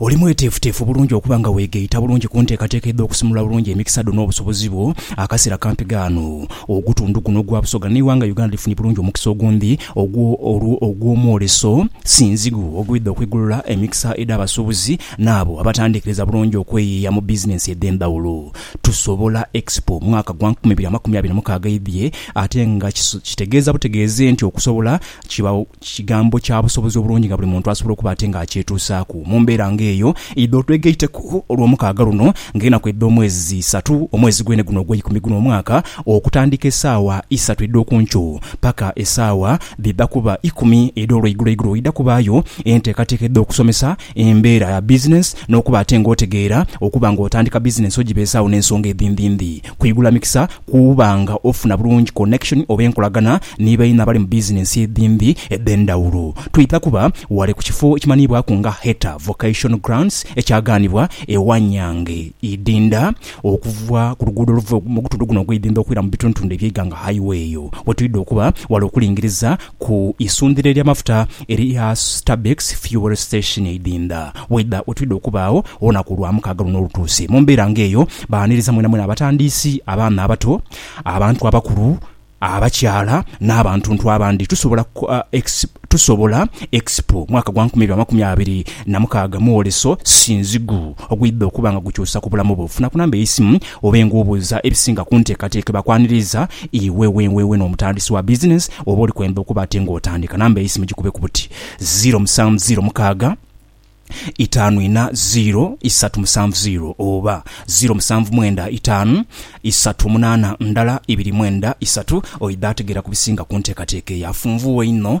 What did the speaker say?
Oli mweteefuteefu bulungi okuba nga weegaita bulungi ku nteekateeka edh'okusimula obulungi emikisa dho n'obusobozi bwo? Akasera kampi ghano, ogutundhu guno ogwa Busoga n'eighanga Uganda lifunye bulungi omukisa ogundi ogw'omwoleso sinzighu ogwidha okwigulula emikisa edh'abasuubuzi n'abo abatandiikiriza bulungi okweyiiya mu bizinensi edh'endhawulo. Tusobola Expo mwaka gwa nkumi ibiri amakumi abiri na mukaaga eidhie ate nga kitegeeza butegeeze nti okusobola Kigambo kya busobozi obulungi nga buli muntu asobola okuba ate nga akyetuusaaku. Mu mbeera nga eyo, idho twegaiteku Olwomukaaga luno ng'enaku edh'omwezi zi isatu, omwezi gwene guno ogw'eikumi guno omwaka, okutandika esaawa isatu edh'oku nkyo paka esaawa dhidha kuba ikumi edh'olweiguloigulo. Idha kubaayo enteekateeka edh'okusomesa Embeera ya bizinensi n'okuba ate ng'otegeera okuba ng'otandika bizinensi ogibeezaawo n'ensonga edhindhindhi. Kwigula mikisa kuba nga ofuna bulungi connection oba enkolagana ni baino abali mu bizinensi edhindhi edh'endhawulo. Twidha kuba wale ku kifo ekimanhiibwaku nga Heta Vocation Grounds ekyagaanibwa e Wanyange, Idinda, okuva ku luguudo oluva mu gutundu guno ogw'Idinda okwira mu bitundutundu eby'eighanga, Highway. Eyo wetwidha okuba wale okulingiriza. ku isundhiro ery'amafuta erya Stabex Fuel Station e Idinda Weda wetwidha okubaagho olunaku olwamukaaga luno olutuuse. Mu mbeera nga eyo, baaniriza mwenamwena abatandiisi, abaana abato, abantu abakulu, abakyala n'abantuntu abandi Tusobola Tusobola Expo mwaka gwa nkumi ibiri amakumi abiri na mukaaga Mwoleso si nzigu ogwidha okuba nga gukyusa ku bulamu bwo. Funa ku namba ey'eisimu Obe ng'obuuza ebisinga ku nteekateeka ebakwaniriza, iwe wenwewe n'omutandisi wa bizinensi oba oli kwemba okuba ate ng'otandika, namba y'eisimu gikubeku buti, ziiro musanvu ziiro mukaaga, itaanu ina ziiro isatu musanvu ziiro oba ziiro musanvu mwenda itaanu isatu munaana ndala ibiri mwenda isatu. Oidha ategeera ku bisinga ku nteekateeka eyo afunvuwa einho